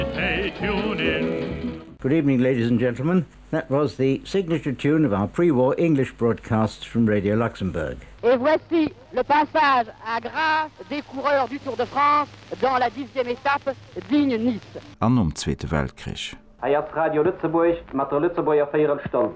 Hey tune in. Good evening ladies and gentlemen, that was the signature tune of our pre-war English broadcasts from Radio Luxembourg. Et voici le passage à gras des coureurs du Tour de France dans la dixième étape, Digne-Nice. An nom Zweete Weltkrich. Hei ass Radio Lëtzebuerg mat der Lëtzebuerger Véierelstonn.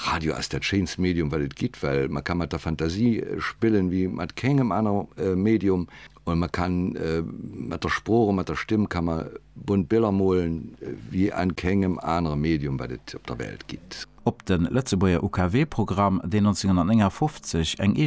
Radio ass dat schéinst Medium wat et gitt, well mer ka mat der Fantasie spillen wéi mat kengem aner Medium. An mer kann mat der Sprooch a mat der Stëmm ka mer bunt Biller molen wéi an kengem anere Medium wat et op der Welt gitt. Op de Lëtzebuerger UKW-Programm, deen 1959 eng.